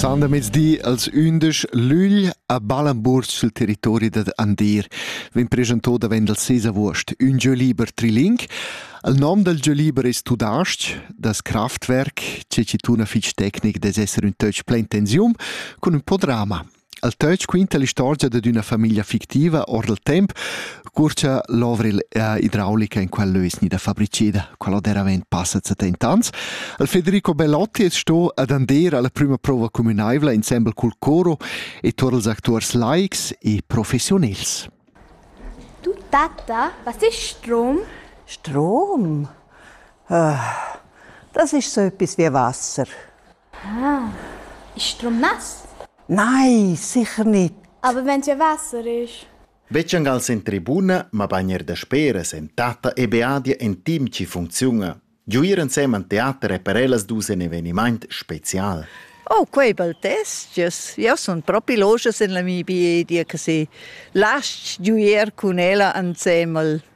Sandemezdi als undisch Lügl a Ballenburg sul territori dad Andir vegn presentò davent il 6 avuost ün jeu liber triling. Il nom del jeu liber es tudasc, das Kraftwerk, che ci tuna fich tecnic des esser ün töch plein tensium cun ün po drama. El töch quinta l'istorgia dad üna famiglia fictiva our dal temp, cur cha l'ovra idraulica in quel lö es gnida fabriceda, quella deravant passa setent'ans. El Federico Bellotti es sto ad Andera la prüma prova cumünaivla insembel cul coro e tuot ils actuars laics e professiunels. Du tata, was ist Strom? Strom? Ah, das ist so etwas wie Wasser. Ah, instrumass? Nei, sicher nicht. Aber wenn dir Wasser ist? Vecengas in tribuna, ma bagn er dasperas en tata e beadia en team ci funcziuna. Giuir ensem an teater e per ellas dus en evenimaint special. Oh, quei bel test. Io sun propi logias en la mi beadia che se lasci giuir cun ella ensem al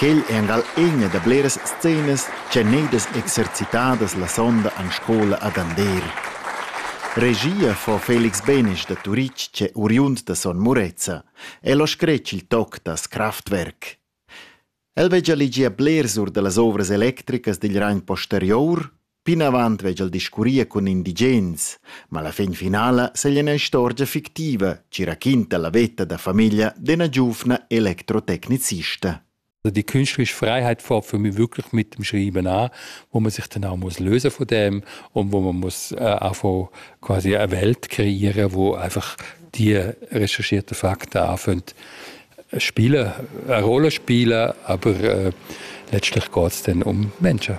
Quel è angal ina da bleras scenas ch'èn gneidas exercitadas la sonda en scola ad Andeer. Regia fa Felix Benesch da Turitg ch'è oriund da Son Murezza. El ha scretg il toc da Kraftwerk. El veggia legier blers or da las ovras electricas digl ragn posterior Plinavant vegl discurrir cun indigens, ma la fin finala segl ina istorgia fictiva ci raquinta la veta da famiglia d'ena giuvna electrotecnicista. Also die künstlerische Freiheit fängt für mich wirklich mit dem Schreiben an, wo man sich dann auch muss lösen von dem und wo man muss äh, einfach quasi eine Welt kreieren, wo einfach die recherchierten Fakten anfangen spielen, eine Rolle spielen, aber äh, letztlich geht es dann um Menschen.